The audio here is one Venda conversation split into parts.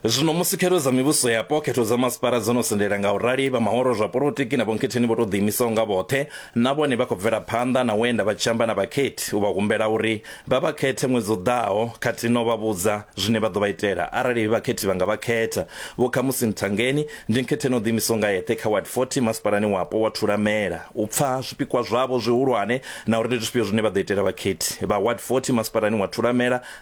Zwino musi khero dza mivhuso yapo, khetho dza masipala dzo no sendela nga u rali, vha mahoro zwa polotiki na vhonkhetheni vho tou ḓiimisaho nga vhoṱhe na vhone vha khou bvela phanḓa na u enda vha tshi amba na vhakhethi u vha humbela uri vha vha khethe ṅwedzi u ḓaho khathihi na u vha vhudza zwine vha ḓo vha itela arali he vhakhethi vha nga vha khetha. Vho Khamusi Mthangeni, ndi nkhetheni o ḓiimisaho nga eṱhe kha Ward 40 masipalani wapo wa Thulamela, u pfa zwipikwa zwavho zwihulwane na uri ndi zwifhio zwine vha ḓo itela vhakhethi vha Ward 40 masipalani wa Thulamela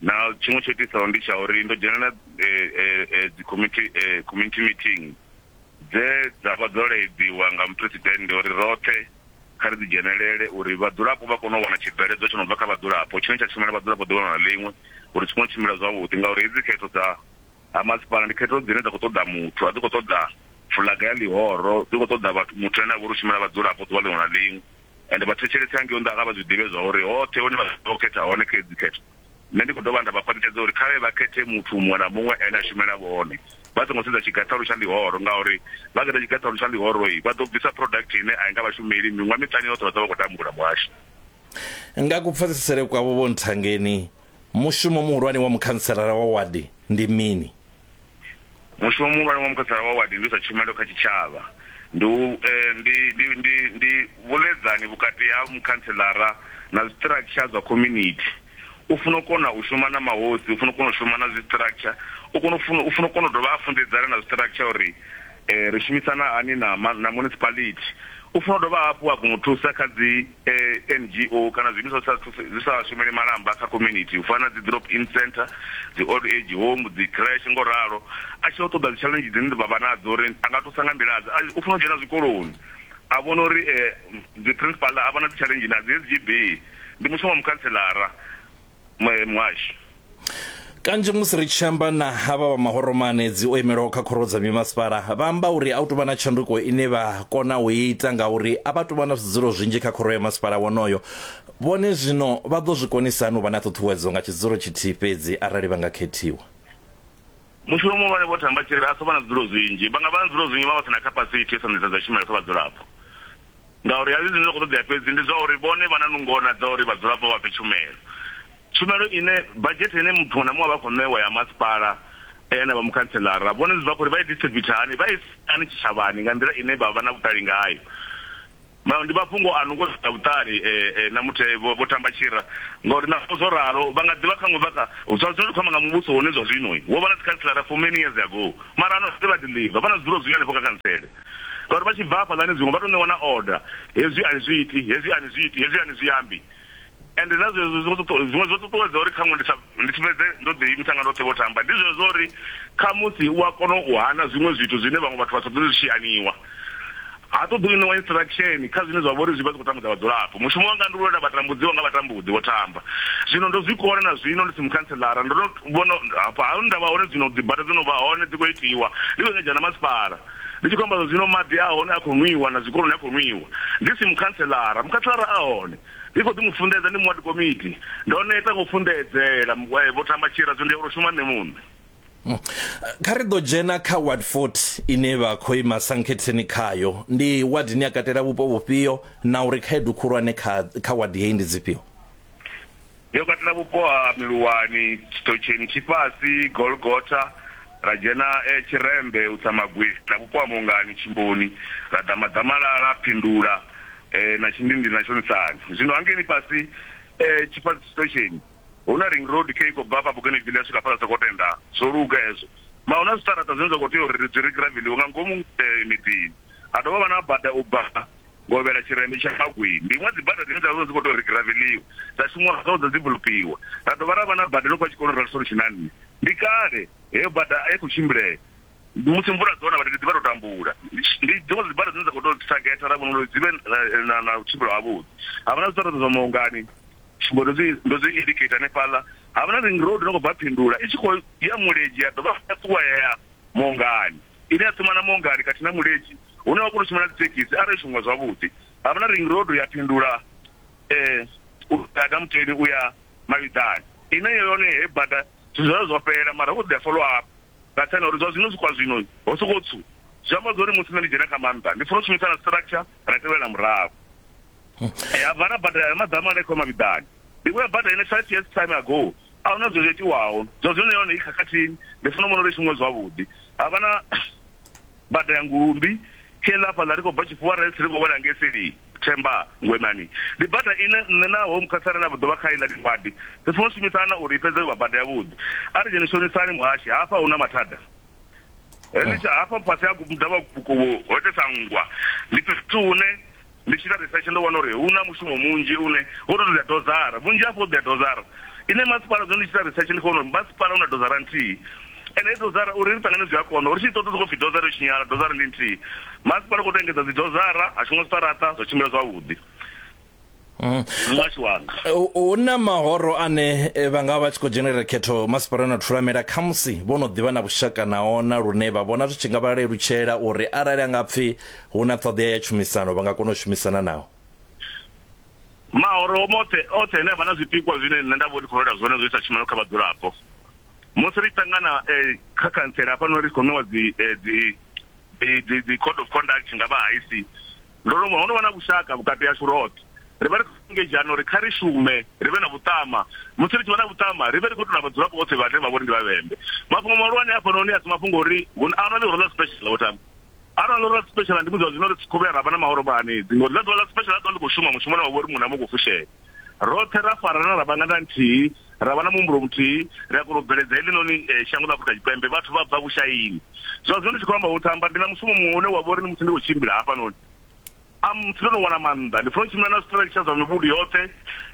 Na tshiṅwe tsho itisaho ndi tsha uri ndo dzhenela dzi committee community meeting dze dza vha dzo laedziwa nga muphuresidennde uri roṱhe kha ri dzi dzhenelele uri vhadzulapo vha kone u wana tshibveledzwa tsho no bva kha vhadzulapo tshine tsha shumela vhadzulapo ḓuvha na ḽiṅwe uri zwi kone u tshimbila zwavhuḓi ngauri hedzi khetho dza ha masipala ndi khetho dzine dza khou ṱoḓa muthu a dzi khou ṱoḓa fulaga ya ḽihoro dzi khou ṱoḓa vhathu muthu ane a vha uri u shumela vhadzulapo ḓuvha ḽiṅwe na ḽiṅwe. ende vha thetshelese hangei nnḓa kha vha zwi ḓivhe zwa uri hoṱhe hune vha ḓo khetha hone kha edzi khetho nṋe ndi khou dovha nda vha khwaṱhisedza uri khavhe vha khethe muthu muṅwe na muṅwe ane a shumela vhone vha songo sedza tshigaṱhalu tsha ḽihoro ngauri vha khetha tshigaṱhalu tsha ḽihoroi vha ḓo bvisa product ine a i nga vhashumeli miṅwaha miṱani yoṱhe vha ḓo vha khou tambula muhasho nga kupfesesele kwavho vho nthangeni mushumo muhulwane wa mukhantselara wa wadi ndi mini Mushumo muhulwane wa mukhansela wa wadi ndi u isa tshumelo kha tshitshavha. Ndi u, eh, ndi, ndi, ndi, ndi vhuḽedzani vhukati ha mukhantselara na zwiṱiraksha zwa khomunithi. U funa u kona u shuma na mahosi, u funa u kona u shuma na zwiṱiraksha, u kona u funa, u funa u kona u dovha a funḓedzana na zwiṱiraksha uri eh, ri shumisana hani na, na municipality. U funa u dovha hafhu a kona u thusa kha dzi. NGO kana zwiimiswa zwi sa thuse zwi sa shumeli malamba kha community u fana na dzi drop in centre, dzi old age home, dzi creche ngo ralo. A tshi ya u ṱoḓa dzi challenge dzine vha vha nadzo uri a nga thusa nga nḓila dze, u funa u dzhena zwikoloni a vhona uri dzi principal a vha na dzi challenge na dzi SGB ndi mushumo wa mukhantselara muhasho kanzhi musi ri tshi amba na havha vha mahoromane dzi o imelaho kha khoro dza mimasipala vha amba uri a u tovha na tshanduko ine vha kona u ita ngauri a vha tovha na zwidzulo zwinzhi kha khoro ya masipala wonoyo vhone zwino vha ḓo zwi konisani u vha na ṱhuṱhuwedzo nga tshidzulo tshithihi fhedzi arali vha nga khethiwa Mushumo muhulwane Vho Thamba Tshirivhe a so vha na zwidulo zwinzhi, vha nga vha na zwidulo zwinzhi vha vha si na khapasithi yo sa ṋetshedza tshumelo kha vhadzulapo ngauri a si zwine zwa khou ṱoḓea fhedzi ndi zwa uri vhone vha na nungo na dza uri vhadzulapo vha pfe tshumelo. Tshumelo ine badzhethe ine muthu muṅwe na muṅwe a vha a khou ṋewa ya masipala na vha mukhantseḽara vhone zwi bva kha uri vha i distributha hani, vha i isa hani tshitshavhani nga nḓila ine vha vha na vhuṱali ngayo. Vhaṅwe ndi mafhungo a nungo dzi si na vhuṱali na muthe vho tamba tshira, ngauri naho zwo ralo, vha nga ḓi vha kha ṅwe vha kha. Zwa zwino ri khou amba nga muvhuso wone zwa zwino, wo vha na dzikhanselara for many years ago, mara ano vha ḓi ḽiva, vha na zwidulo zwinzhi hanefho kha khantsele, ngauri vha tshi bva hafhaḽani zwiṅwe vha tou ṋewa na order, hezwi a ni zwi iti, hezwi a ni zwi iti, hezwi a ni zwi ambi. Ende na zwezwo zwo ṱuṱu, zwiṅwe zwo ṱuṱuwedza uri khaṅwe ndi sa, ndi si fhedze ndo ḓiimisa nga ndoṱhe vho tamba. Ndi zwezwo uri khamusi u a kona u hana zwiṅwe zwithu zwine vhaṅwe vhathu vha sa ṱoḓi zwi tshi haniwa. Ha ṱoḓi u ṋewa instruction kha zwine zwa vha uri zwi vha zwi khou tambudza vhadzulapo. Mushumo wanga ndi u lwela vhatambudziwa nga vhatambudzi, vho tamba. Zwino ndo zwi kona na zwino ndi si mukhantseḽara. Ndo no vhona hafha, ha hune nda vha hone zwino, dzibada dzo no vha hone, dzi khou itiwa, ndi khou engedzea na masipala. ndi tshi khou amba zwa zwino maḓi a hone a khou nwiwa na zwikoloni a khou nwiwa ndi si mukhantselara mukhantselara a hone ndi khou ḓi mu funḓedza ndi muwadi komiti ndo neta ngo funḓedzela eh, vho tamba tshira zwo ndi ya shuma nṋe muṋe hmm. kha ri ḓo dzhena kha ward 40 ine vha khou ima sankhetheni khayo ndi ward ni ya katela vhupo vhufhio na uri khaedu khulwane kha kha ward heyi ndi dzifhio Yo katela vhupo ha Miluwani, Tshitotsheni, Tshifhasi, Golgotha, ra dzhena e Tshirembe, u tsa Magwevhi, na vhupo ha Mungani, Tshimboni, ra ḓa Maḓamalala, Phindula, e na Tshindindini na Tshonisani. Zwino hangei ḽifhasi e Tshifhasi, Tshitotsheni, hu na ring road khe i khou bva hafha Bougainville ya swika hafhaḽa Sekotenda. Zwo luga hezwo. Mara hu na zwiṱaraṱa zwine zwa khou tea uri ri zwi ri graveliwe nga ngomu miḓini. Ha dovha ha vha na bada u bva Govhela tshirendo tsha Magwee ndi iṅwe ya dzibada dzine dza vha dzi khou tou ri giraveliwa, dza shumiwa nga u ḓa dzi vulupiwa ra dovha ra vha na bada ḽo fha tshikoloni ra ḽi solution na nṋe. Ndi kale heyo bada a i khou tshimbilea, musi mvula dzo na vhathu ri ḓi vha ro tambula. Ndi dziṅwe dza dzibada dzine dza khou tou thagetha ra vhona uri dzi vhe na na vhutshimbilwa havhuḓi. Ha vha na zwiṱaraṱa zwa Maungani, tsumbo ndo dzi ndo dzi indicator hanefhaḽa, ha vha na ring road ine ya khou bva Phindula i tshi khou ya Mulenzhe ya dovha ya ṱuwa ya ya Maungani. ine ya ṱumana Mongani khathihi na Mulenzhi hune wa kona u tshimbila na dzithekhisi arali zwo shongiwa zwavhuḓi. Ha vha na Ring Road ya fhindula u bva Damuteni u ya Mavhiḓani ine yone heyi bada zwithu zwayo zwo fhela mara hu khou ḓi ḓa follow up nga nṱhani ha uri zwa zwino zwi kwa zwino ho sokou tswu. Zwi amba zwa uri musi nṋe ndi dzhena kha maanḓa ndi funa u shumisa na structure ra tevhela murahu ya bva ra badela ya maḓamu ane khou mavhiḓani ndi khou ya badela ine five years time ago a huna zwo zwo itiwaho zwa zwino yone i khakhathini ndi funa vhona uri shumiwe zwavhuḓi ha vha na bada ya ngulumbi khela fhaḽa ri khou bva tshifhiwa ri ri khou wela ngei seli themba ngwenani ndi bada ine nṋe na home khatsara na ḓovha kha iḽa ḽiwadi ri funa u shumisana uri i fhedze vha bada yavhuḓi a ri dzheni shonisani muhashi hafha hu na mathada henetsha hafha fhasi ha kubuda vha kukuwo ho itesa nngwa ndi fhethu hune ndi tshi ita research ndo vhona uri hu na mushumo munzhi une wo to ḓa dozara vhunzhi hafho ḓa dozara ine masipala zwino ndi tshi ita research ndi khou vhona uri masipala una dozara nthihi ende dozara uri ri ṱangane zwi a kona uri tshi ṱoḓa sokou pfi dozara yo tshinyala dozara ndi nthihi masipala u khou to engedza dzi dozara ha shuma zwiṱaraṱa zwa tshimbila zwavhuḓi Mm. muhasho wanga hu na mahoro ane eh, vha nga vha tshi khou dzhenelela khetho masipala na thulamela khamusi vho no ḓivha na vhushaka na ona lune vha vhona zwi tshi nga vha lelutshela uri arali a nga pfhi hu na ṱhoḓea ya tshumisano vha nga kona u shumisana nao mahoro mothe othe ane avha na zwipikwa zwine nṋe nda vho ndi khou lwela zwone zwo isa tshumelo kha vhadzulapo musi ri ṱangana eh, kha khantsela hafhanoni ri khou ṋewa dzi eh, dzi dzi- dzi- dzi code of conduct nga vha haisi Ndo lovha ho no vha na vhushaka vhukati hashu roṱhe. Ri vha ri khou engedzhana uri kha ri shume, ri vhe na vhuṱama. Musi ri tshi vha na vhuṱama, ri vhe ri khou tou na vhadzulapo vhoṱhe vhane vha vha uri ndi Vhavhembe. Mafhungo mahulwane a hafhanoni a si mafhungo a uri hu na Arali ro ḽa special, Vho Tambu. Arali ro ḽa special ndi musi zwa zwino ri tshi khou vhuya ra vha na mahoro vha Hanedzi, ngauri ḽa ḓuvha ḽa special ḽa ḓo vha ḽi khou shuma mushumo une wa vha uri muṅwe na muṅwe u khou fushea. roṱhe ra farana ra vha nga nda nthihi ra vha na muhumbulo muthihi ri a kona u bveledza heḽinoni eh, shango ḽa afurika tshipembe vhathu vha bva vhushaini zwa zwino ndi tshi khou amba u thamba ndi na mushumo muṅwe une wa vha uri ndi musi ndi khou tshimbila hafhanoni amusi ndo no wana maanḓa ndi funa u tshimbila na zwiṱiratsha zwa mivhundu yoṱhe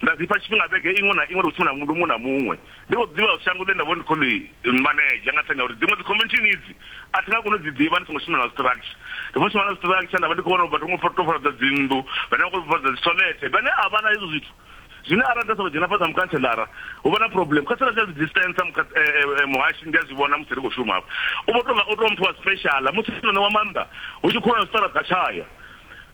nda zipfa tshifhinga vhege iṅwe na iṅwe ndi khou tshimbila muvhundu muṅwe na muṅwe Ndi khou ḓivha uri shango ḽine nda vha uri ndi khou ḽi manedzha nga nṱhani ha uri dziṅwe dzikhomiishini idzi a thi nga koni u dzi ḓivha ndi songo shumela nga structure. Ndi khou shuma nga structure nda vha ndi khou vhona uri vhathu vho ngo tou fhaṱa dzinnḓu, vhane vha khou tou fhaṱa dzitholethe vhane a vha na hezwo zwithu zwine arali nda sokou dzhena fhasi ha mukhantseḽara hu vha na problem. Kha sia ḽa social distance muhashi ndi a zwi vhona musi ri khou shuma hafha u vho tou nga u tou vha muthu wa special musi o no ṋewa maanḓa hu tshi khou lwa na zwiṱaraṱa a tshaya.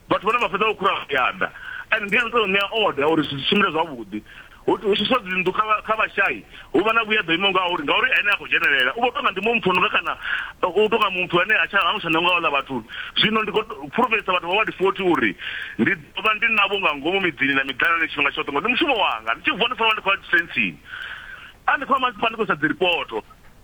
Vhathu vhane vha fhedza vho khura vha ya ḓa, and ndi ene o tou ṋea order uri zwithu zwi tshimbile zwavhuḓi. Hu tshuswa dzinnḓu kha kha vhashai, hu vha na vhueḓa ho imaho ngauri, ngauri ene ha khou dzhenelela. U vha o tou nga ndi muṅwe muthu o no nga kana u tou nga muthu ane ha tsha, ha ngo tsha ṋewa nga vhaḽa vhathu. Zwino ndi khou fulufhedzisa vhathu vha Ward 40 uri ndi ḓo vha ndi navho nga ngomu miḓini na miḓanani tshifhinga tshoṱhe, ngori ndi mushumo wanga. Ndi tshi vuwa ndi fanela u vha ndi khou ya dzisensini, arali ndi khou ya masipala ndi khou isa dziripoto.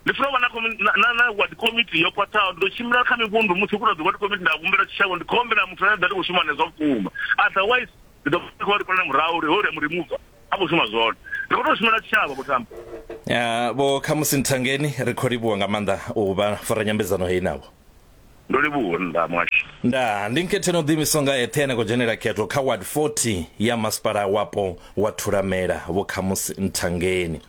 Ndi funa u vha na komi- na- na- na ward committee yo khwaṱhaho ndi ḓo tshimbila kha mivhundu musi hu khou tou dzi ward committee nda humbela tshitshavho ndi khou humbela muthu ane a ḓa ndi khou shuma nezwa vhukuma otherwise ndi ḓo ndi khou vha ndi khou lala murahu uri hoyu ri a mu remova a khou shuma zwone ndi khou tou shumela tshitshavho vho tamba Ah, vho khamusi nthangeni ri khou livhuwa nga maanḓa u vha fara nyambedzano heyi navho Ndo livhuwa nda mwasha. Ndaa, ndi Nkhetheni o ḓiimisaho nga eṱhe ane a khou dzhenela khetho kha Ward 40 ya Masipala Wapo wa Thulamela, Vho Khamusi Nthangeni.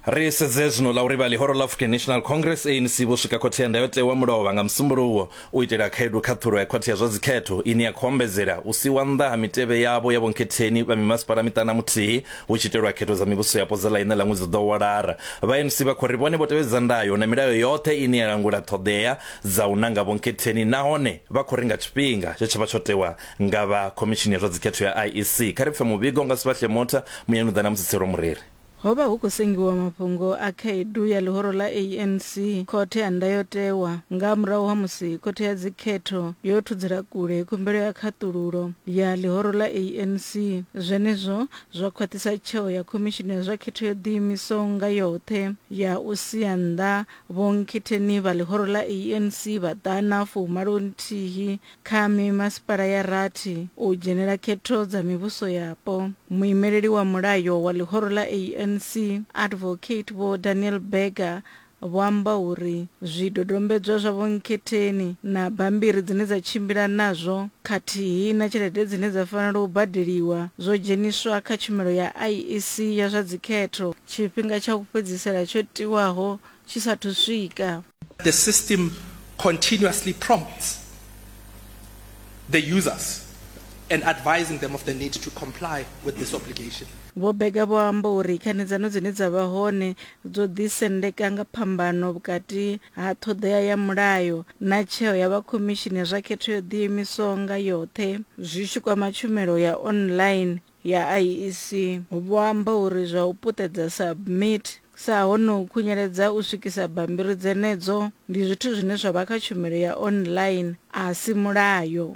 Ri sedze zwino ḽa uri vha ḽihoro ḽa African National Congress, ANC, vho swika Khothe ya Ndayotewa Mulovha nga Musumbuluwo u itela khaedu khaṱhulo ya Khothe ya zwa Dzikhetho ine ya khou ombedzela u siiwa nnḓa ha mitevhe yavho ya Vho Nkhetheni vha mimasipala miṱana muthihi Hu tshi itelwa khetho dza mivhusoyapo dza ḽa iṋa ḽa ṅwedzi u ḓaho wa Lara, vhaMC vha khou ri vhone vho tevhedza ndayo na milayo yoṱhe ine ya langula ṱhoḓea dza u nanga vhonkhetheni nahone vha khou ri nga tshifhinga tshe tsha vha tsho tewa nga vha Khomishini ya zwa Dzikhetho ya IEC kha ri pfe muvhigo nga Sbahle Motha, Muyanuḓa na Musitselwa Mureri. Ho vha hu khou sengiwa mafhungo a khaedu ya ḽihoro ḽa ANC, Khothe ya Ndayotewa, nga murahu ha musi Khothe ya Dzikhetho yo thudzela kule khumbelo ya khaṱululo. ya ḽihoro ḽa ANC. Zwenezwo zwo khwaṱhisa tsheo ya Khomishini ya zwa Khetho yo Ḓiimisaho nga Yoṱhe ya u sia nnḓa vhonkhetheni vha ḽihoro ḽa ANC vha ḓana fumalo nthihi kha mimasipala ya rathi u dzhenela khetho dza mivhuso yapo. Muimeleli wa mulayo wa ḽihoro ḽa ANC, Advocate Vho Daniel Berger, Vho amba uri zwidodombedzwa zwa Vho Nkhetheni na bammbiri dzine dza tshimbila nazwo khathihi na tshelede dzine dza fanela u badeliwa zwo dzheniswa kha tshumelo ya IEC ya zwa dzikhetho tshifhinga tsha u fhedzisela tsho tiwaho tshi sa athu swika. The system continuously prompts the users and advising them of the need to comply with this obligation. Vho Burger vho amba uri khanedzano dzine dza vha hone dzo ḓisendeka nga phambano vhukati ha ṱhoḓea ya mulayo na tsheo ya vha Khomishini ya zwa Khetho yo Ḓiimisaho nga Yoṱhe zwi tshi kwama tshumelo ya online ya IEC. Vho amba uri zwa u puṱedza submit sa hone u khunyeledza u swikisa bammbiri dzenedzo ndi zwithu zwine zwa vha kha tshumelo ya online, a si mulayo.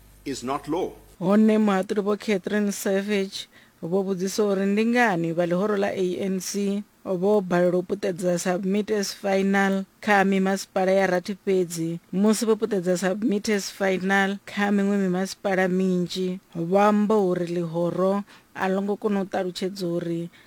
is not law. Hone muhaṱuli Vho Catherine Savage vho vhudzisa uri ndi ngani vha ḽihoro ḽa ANC vho balelwa u puṱedza Submit as Final kha mimasipala ya rathi fhedzi musi vho puṱedza Submit as Final kha miṅwe mimasipala minzhi. Vho amba uri ḽihoro a ḽo ngo kona u ṱalutshedza uri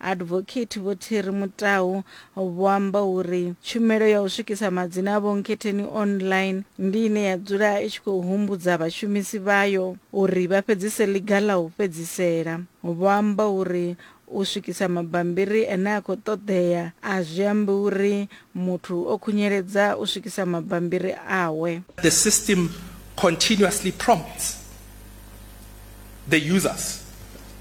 Advocate Vho Thiri Mutau vho amba uri tshumelo ya u swikisa madzina a Vho Nkhetheni online ndi ine ya dzula i tshi khou humbudza vhashumisi vhayo uri vha fhedzise ḽiga ḽa u fhedzisela. Vho amba uri u swikisa mabambiri ane a khou ṱoḓea a zwi ambi uri Muthu o khunyeledza u swikisa mabambiri awe. The system continuously prompts the users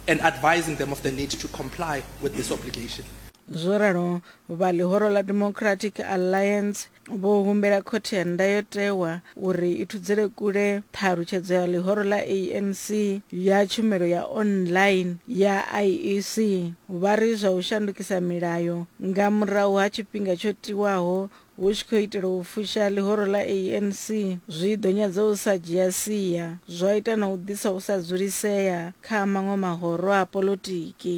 and advising them of the need to comply with this obligation. Zwo ralo, vha ḽihoro ḽa Democratic Alliance vho humbela Khothe ya Ndayotewa uri i thudzele kule ṱhalutshedzo ya ḽihoro ḽa ANC ya tshumelo ya online ya IEC, vha ri zwa u shandukisa milayo nga murahu ha tshifhinga tsho tiwaho hu tshi khou itelwa u fusha ḽihoro ḽa ANC zwi ḓo nyadza u sa dzhia sia, zwa ita na u ḓisa u sa dzulisea kha maṅwe mahoro a poḽotiki.